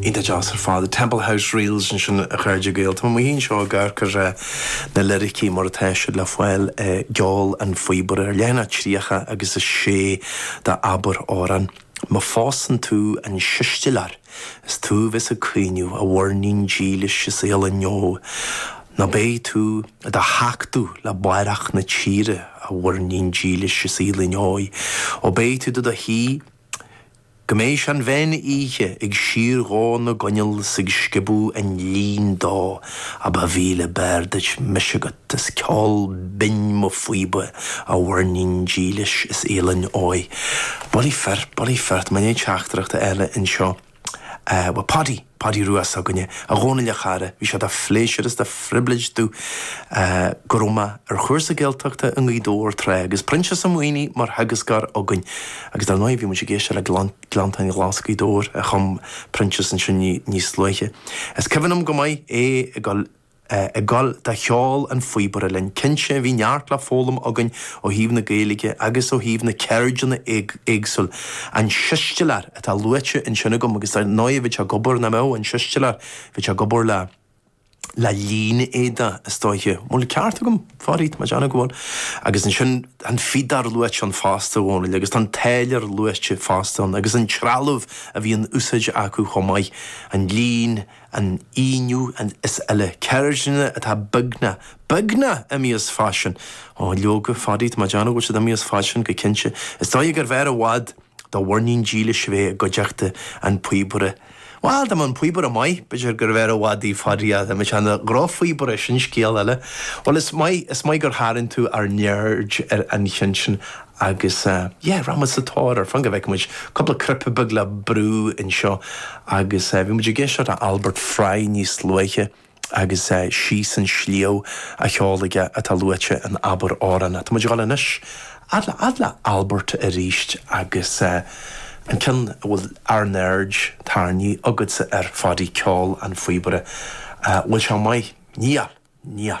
Iontach deas ar fad. Temple House Reels ansin a chairde Gael. Tá mé mo shuí anseo ag amharc ar na liricí mar atá siad le fáil i gCeol an Phíobaire ar leathanach tríocha agus a sé d'Abair Amhrán. Má phósann tú an siostalóir is tú a bheas ag caoineadh, a mhuirnín dílis is fhaoileann óg, nó beidh tú i do thachtadh le barrach na tíre, a mhuirnín dílis is fhaoileann óg, ó beidh tú do do shuí. Go mbeidh sé an meán oíche ag síordhó na gcoinneal 's ag sciobadh an lín dó ach ba mhíle b'fhearr duit mise agat is ceol binn mo phíoba a mhuirnín dílis is fhaoileann óg. Bulaí fir, bulaí fir, tháinig teachtaireacht eile anseo. Eh, bhuel, Paudie, Paudie Rua s'againne. A Dhónaill, a chara, bhí sé de phléisiúr is de phribléid domh, eh, go raibh mé ar chúrsa Gaeltachta i nGaoth Dobhair tráth agus Proinsias Ó Maonaigh mar theagascóir againn. Agus dar ndóigh, bhí muid ag éisteacht le Gleann, Gleanntáin Ghlas' Ghaoth Dobhair a chum Proinsias ansin ní, níos luaithe. Is cuimhin liom go maith é ag dul, ag dul do cheol an phíobaire linn. Cinnte, bhí neart le foghlaim againn ó thaobh na Gaeilge agus ó thaobh na ceirdeanna éagsúla. An siostalóir atá luaite ansin agam agus dar ndóigh bhí sé ag obair, nach mbeadh? An siostalóir, bhí sé ag obair le, le línéadach is dóiche. An bhfuil ceart agam? A Phaddy, tá mé ag déanamh go bhfuil. Agus ansin tá an fíodóir luaite ann fosta, a Dhónaill, agus tá an táilliúr luaite fosta ann. Agus an trealamh a bhí in úsáid acu chomh maith, an líon, an inneoin is eile. Ceirdeanna atá beagnach, beagnach imithe as faisean. Ó, leoga, Phaddy, tá mé ag déanamh go bhfuil siad imithe as faisean go cinnte. Is dóigh gurbh fhearr i bhfad do mhuirnín dílis a bheith i gcuideachta an phíobaire. Bhal, dá mba an píobaire maith, b'fhéidir gurbh fhearr i bhfad í, Phaddy, ach más é an drochphíobaire, sin scéal eile. Bhuel, is maith, is maith gur tharraing tú ár n-aird ar an cheann sin. Agus yeah, rachaidh muid sa tóir air, fan go bhfeice muid cúpla cnaipe beag le brú anseo agus bhí muid ag éisteacht le Albert Fry níos luaithe agus Síos an Sliabh á cheol aige atá luaite in Abair Amhrán. Tá muid ag dul anois fhad le fhad le Albert arís agus an ceann a bhfuil ár n-aird tarraingthe agatsa air, a Pháidí, Ceol an Phíobaire. Bhfuil sé maith? Níl! Níl!